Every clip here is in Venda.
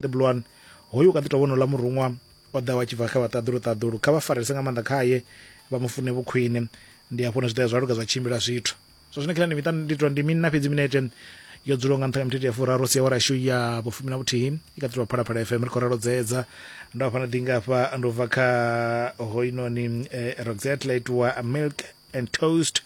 ḓi bulwani hoyu u kha ḓi tovha onola muruṅwa o ḓaho a tshi bva kha vhaṱaḓulu ṱaḓulu kha vha farelese nga maanḓa khaye vha mu fune vhukhwine ndi hafho hune zwi tea zwa luga zwa tshimbila zwithu zwa zwino khilani miṱa ndi tou ndi minna fhedzi minete yo dzulaho nga nṱha nga mithethe ya furaru sia wa rashu ya vhufumi na vhuthihi i kha ḓi tovha phalaphala fm ri khou ralo dzedza ndo hafha na ḓingafha ndo bva kha hoinoni eh, roxette laitiwa milk and toast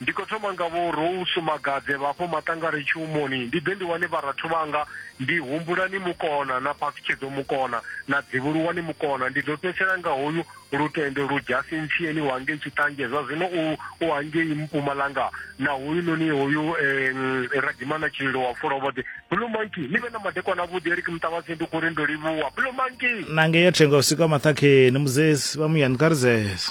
Ndi khou thoma nga Vho Rose Magadze vha afho Maṱangari Tshihumoni, ndi ḓe ndi wane vharathu vhanga, ndi Humbulani Mukona na Phathutshedzo Mukona na Dzivhuluwani Mukona. Ndi ḓo fhedzisela nga hoyu Lutendo Ludzhasi Ntshieni wa ngei Tshiṱanzhe, zwa zwino u u hangei Mpumalanga, na hoyunoni hoyu eh, Radimana Tshililo wa Fulovhoḓe. Blue Monkey, ni vhe na madekwana avhuḓi. Eric Mtavhadzi ndi khou ri ndo livhuwa. Blue Monkey! Na ngei ya thenga vhusiku ha maṱhakheni, Muzesi vha muyani kha ri zese.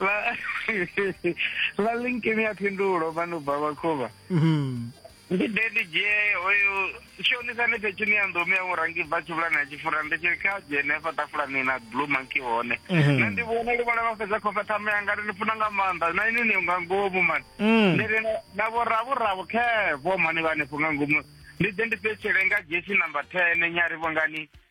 vha vha linki mi a phindulo vha no bva vhakhuvha mhm. ndi de ndi dzhie hoyo shonisa ni fhethu ni ya nḓomi ya murangi bva tshivhulani ya tshifura ndi tshi kha dzhie ne fa tafulani na blue monkey hone mhm. nṋe ndi vhona ndi vhona vha fhedza khofa thama ya ngari ni funa nga maanḓa na ini ni nga ngomu mani mm. ndi ri na vho ravo ravo khe vho mani vha ni funga ngomu ndi de ndi fhetshele nga dzhie tshi number 10 nyari vho ngani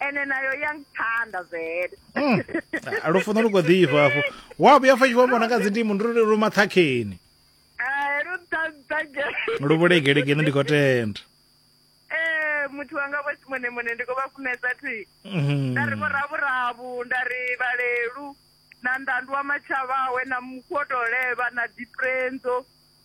ene nayo ya ngithanda vele hmm. ah, lufuno lu khou ḓifha hafho wa vhuya fa tshi vho vhona nga dzindimo ndi lu mathakheni lu vhulegelegeni ndi khou tenda eh, muthu wanga vho simone mone ndi khou vha funesa thi mhm. nda ri vhoravhuravu nda ri vhalelu na ndandu wa matshavhawe na mukhoto leva na diprenzo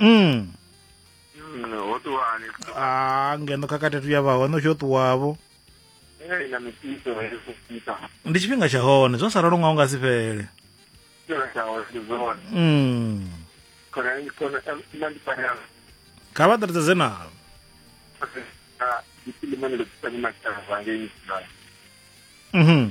mm. ah, ngeno khakhathi tu ya vha hone u tshi yo ṱuwavho ndi tshifhinga tsha hone zwo sa ralo nga u nga si fhele mm. kha vha ṱaritsedze nalo mhm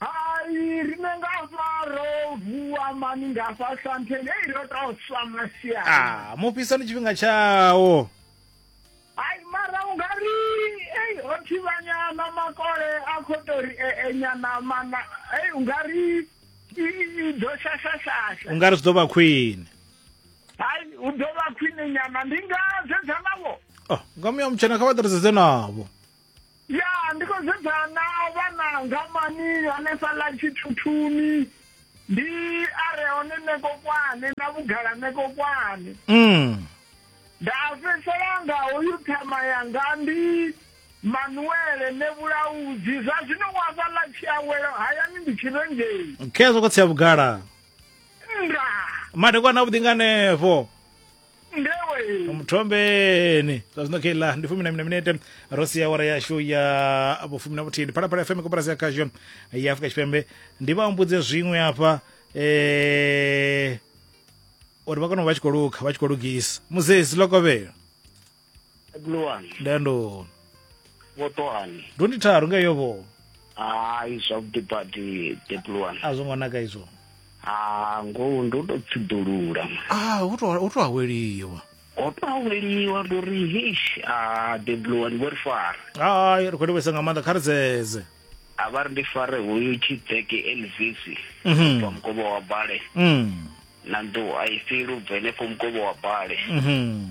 Hai rine nga faro vuwa mani nga fa santheni ei ro tou swa masiani. Ah, mufhisani tshifhinga tshawo. Hai mara u nga ri ei ho thivhanyana makole a khou tou ri enyana eh, eh, mana ei u nga ri i ḓo shashashasha. U nga ri zwi ḓo vha khwine. Hai u ḓo vha khwine nyana ndi nga sedza navho. Oh, nga muya mutshena kha vha ḓirisedzwe navho. ya ndi khou sedzana na vhana ngamani hanefha ḽa tshithuthuni ndi a re hone nekokwane na vhugala nekokwane mm. nda fhedzisela nga hoyu ṱhama yanga ndi manuele ne vhulaudzi zwa zwino wa vha ḽa tshiawelo hayani ndi tshirengei khezwo khotsi ya vhugala nda madekwana avhuḓi nga hanefho ndewe muthombeni zwa zwino khe ḽa ndi fumi na mina minete ro sia awara yashu ya vhufumi na vhuthihi ndi phalaphala fm koporasi ya khasho ya afurika tshipembe ndi vha humbudze zwiṅwe hafha eh, uri vha kone u vha tshi khou lukha vha tshi khou lugisa muzesi lokovhelo luwani ndandoni vhotohani ndo ndi tharu nga yo vho hayi zwavhuḓi badi debluwani a zwo ngo naka izwo ha ngoho ndo to tsiḓulula ah hu to hu to aweliwa ho to aweliwa ndo ri hish a debluwani vho ri fara hayi ri khou livhesa nga maanḓa kha ri dzedze a vha ri ndi fare hoyu tshidzeke elvis Mhm. bva mukovhe wa bale mm na nḓuhu a i fheli u bva henefho mukovhe wa bale mhm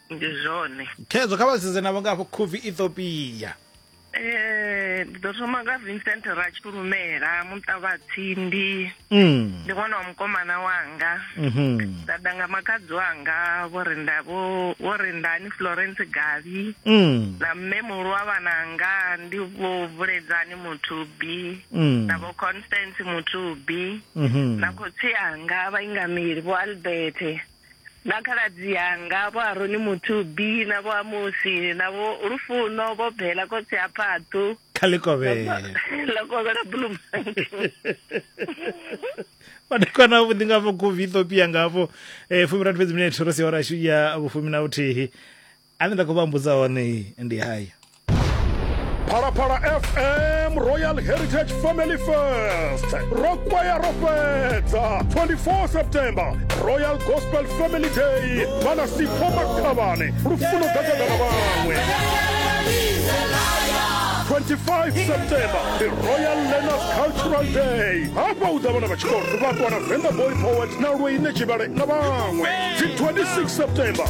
ndi zwone khezwo kha vha sedze navho nga afho khuvi ethiopia Eh, ndi ḓo thoma nga vincent ratshulumela muṱa vha tsindi Mm. ndi ṅwana wa mukomana wanga Mhm. nda ḓa nga makhadzi wanga vho ri nda vho vho ri ndani florence gavi Mm. na mme muhulu wa vhananga ndi vho vuledzani muthubi Mm. na vho constance muthubi Mhm. na khotsi anga vhaingameli vho albert na khaladzi anga vho aroni muthubi na vho amusi na vho lufuno vho bela khotsi ha phathu kha likovhela likovhela bulumange madekwana avho ndi nga vho govi ethiopia ngavho um eh, fumi rathi fhedzi minete ro sia ora ya vhufumi na vhuthihi ane nda khou vha mbudza hone ndi haya phalaphala fm royal heritage family fest ro kwaya ro fhedza 24 september royal gospel family day vhana sipho makhavhane lufuno gagagana vhaṅwe 25 september the royal learners cultural day hafha u ḓa vhana vha tshikolo vha ṱwana venga boy poet na lweine tshivhale na vhaṅwe dzi 26 september